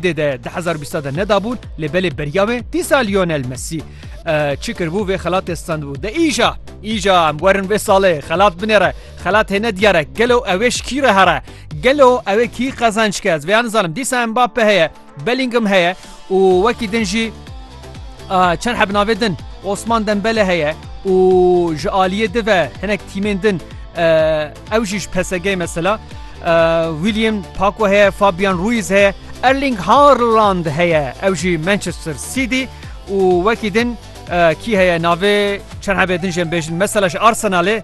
Dê de di hezar û bîst de nedabûn lê belê beriya wê dîsa Lionel Messi çi kiribû vê xelatê standbû de îja îja em werin vê salê xelat binêre xelat hêne diyare gelo ewê ji kî re here gelo ewê kî qezenç ke ez vê nizanim dîsa em bape heye Bellingham heye û wekî din jî çend heb navê din Osman Dembele heye û ji aliyê dive hinek tîmên din Ew jî ji PSG'ê mesela William Paco heye, Fabian Ruiz heye, Erling Haaland heye, ew jî Manchester City û wekî din kî heye navê çend hebê din jê em bêjin mesela ji Arsenalê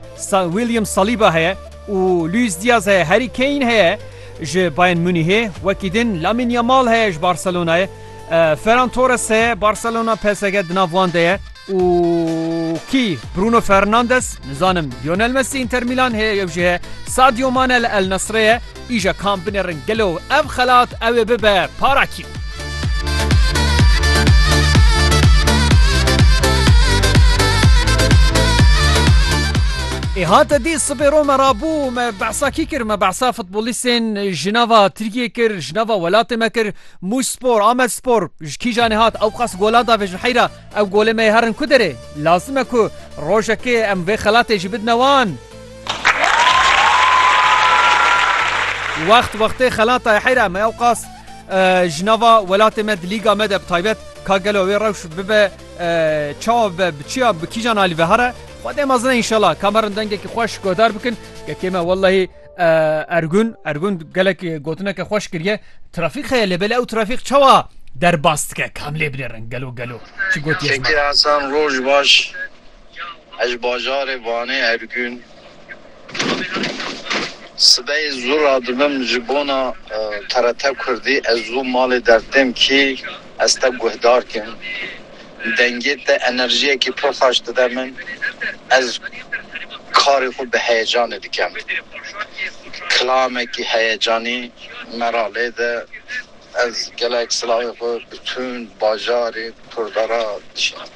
William Saliba heye û Luis Diaz heye, Harry Kane heye ji Bayern Munîhê, wekî din Lamine Yamal heye ji Barcelonayê, Ferran Torres heye, Barcelona PSG di nav wan de ye. Û kî? Bruno Fernandes, nizanim Lionel Messi Inter Milan heye yew jî heye Sadio Mane li El Nasrê ye, îja kam binêrin gelo ev xelat ew ê bibe para kî? Ê hate dî sibê ro me rabû me behsa kî kir? Me behsa futbolîstên ji nava Tirkiyê kir, ji nava welatê me kir, Mûş Spor, Amed Spor ji kîjan ê hat? Ewqas golan da vê ji heyra? Ew golê me yê herin ku derê, lazim e ku rojekê em vê xelatê jî bidine wan. Wext wextê xelata ye heyra me ewqas ji nava welatê me di lîga me de bi taybet ka gelo wê rewş bibe çawa bibe bi çiya bi kîjan alî ve here xwedê mezin e înşela ka me rin dengekî xweş guhdar bikin kekê me wellahî Ergun Ergun gelek gotineke xweş kiriye trafîk heye lê belê ew trafîk çawa derbas dike kam lê binêrin gelo gelo çi gotiye Çekê Hesan roj baş ez ji bajarê Vanê Ergun sibeyê zû radibim ji bona TRT Kurdî ez zû malê dertêm kî ez te guhdar kim Dengê te enerjiyekî pir xweş dide min, ez karê xwe bi heyecanê dikim. Kilamekî heyecanî me ra lê de, ez gelek silavê xwe bi tund bajarê Kurda ra dişînim.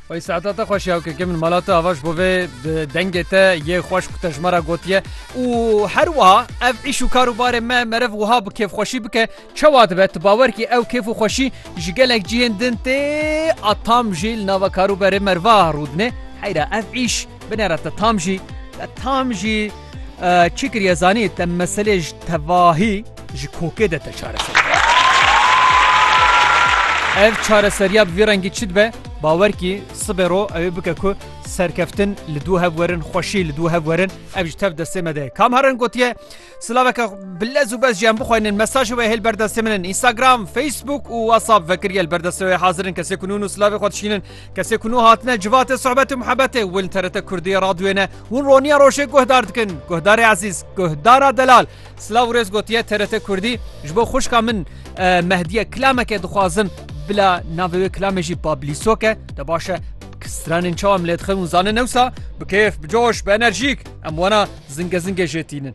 Wey saeta te xweş ya keke min mala te ava ji bo vê dengê te yê xweş ku te ji me ra gotiye û her wiha ev îş û kar û barê me meriv wiha bi kêfxweşî bike Çawa dibe tu bawer kî ew kêf û xweşî ji gelek cihên din tê a tam jî li nava kar û berê me va rû dine. Heyra ev îş binêre te tam jî te tam jî çi kiriye zanî te meselê ji tevahî ji kokê de te çareser. Ev çareseriya bi vî rengî çi dibe bawer kî sibê ro ew ê bike ku serkeftin li dû hev werin xweşî li dû hev werin ev ji tev destê me de kam herin gotiye Silaveke bi lez û bez ji em bixweynin mesajê wê hêl berdestê min in Instagram, Facebook û WhatsApp vekir gel berdestê wê hazirin kesê ku nûn û silavê xwe dişînin kesê ku nû hatine civatê sohbet û muhebetê win TRT Kurdî radyoyê ne hûn roniya rojê guhdar dikin guhdarê ezîz guhdara delal silav û rêz gotiye TRT Kurdî ji bo xuşka min mehdiye kilameke dixwazim bila navê wê kilamê jî bablîsoke te baş e Stranên çawa em lê dixin û zanin ewsa bi kêf, bi coş, bi enerjîk em wana zingezingê jê tînin.